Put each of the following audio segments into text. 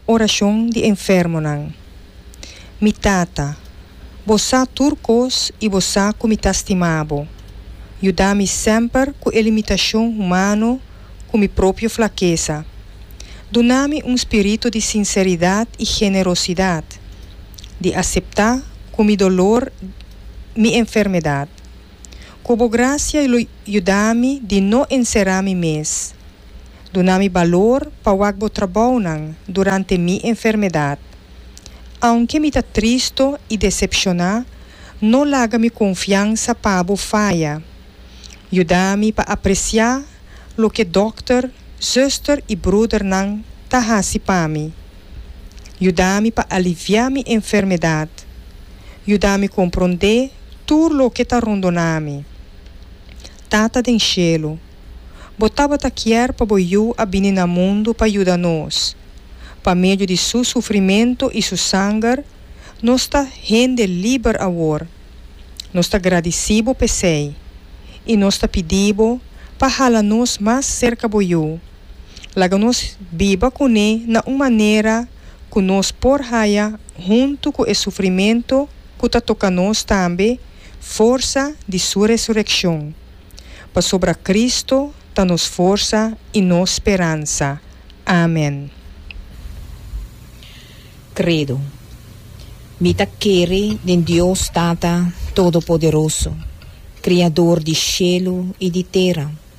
Orashon di enfermonan. Mi Tata, Bo sa tur kos i Bo sa ku mi ta stima Bo. Yuda mi semper ku e limitashon humano ku mi propio flakesa. Duna mi un spiritu di sinseridat i generosidat, di aseptá ku mi dolor mi enfermedat. Ku bo grasia lo yuda mi di no enserá mi mes. Duna mi balor pa wak bo trabounan durante mi enfermedat. Aunke mi ta tristo i desepshoná, no laga mi konfiansa pa bo faya. Yuda mi pa apresiá loke dòkter, zuster i brudernan ta hasi pa mi. Yuda mi pa aliviá mi enfermedat. Yuda mi komprondé tur loke ta rondoná mi. Tata den shelu, Bo tabata kier pa Bo Yu a bini na mundu pa yuda nos. Pa medio di Su sufrimentu i Su sanger, nos ta hende liber awor. Nos ta gradisí Bo p'esei, i nos ta pidí Bo pa hala nos mas serka Bo Yu. Laga nos biba kuné na un manera ku nos por haya huntu ku e sufrimentu ku ta toka nos tambe forsa di su resurekshon. Pasobra Kristu ta nos forsa i nos speransa. Amen. Credo. Mi ta kere den Dios Tata Todopoderoso, Kriador di shelu i di tera,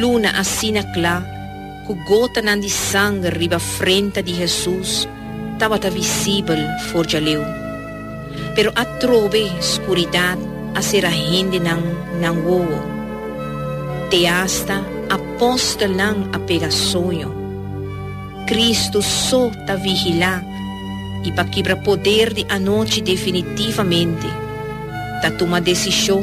Luna asina kla, ku gotanan di sanger riba frenta di Hesus tabata visibel for djaleu. Pero atrobe skuridat a sera hendenan nan wowo. Te asta apòstelnan a pega soño. Kristu so ta vigilá i pa kibra poder di anochi definitivamente, ta tuma desishon,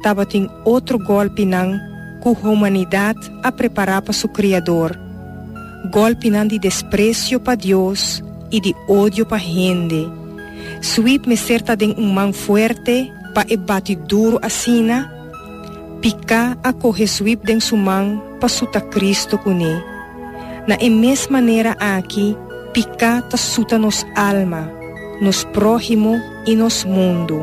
Tabatin otro gòlpinan ku humanidat a prepará pa su Kriador, gòlpinan di despresio pa Dios i di odio pa hende. Sweep mester ta den un man fuerte pa e bati duru asina? Piká a kohe Sweep den su man pa suta Kristu kuné. Na e mes manera aki, piká ta suta nos alma, nos próhimo i nos mundu.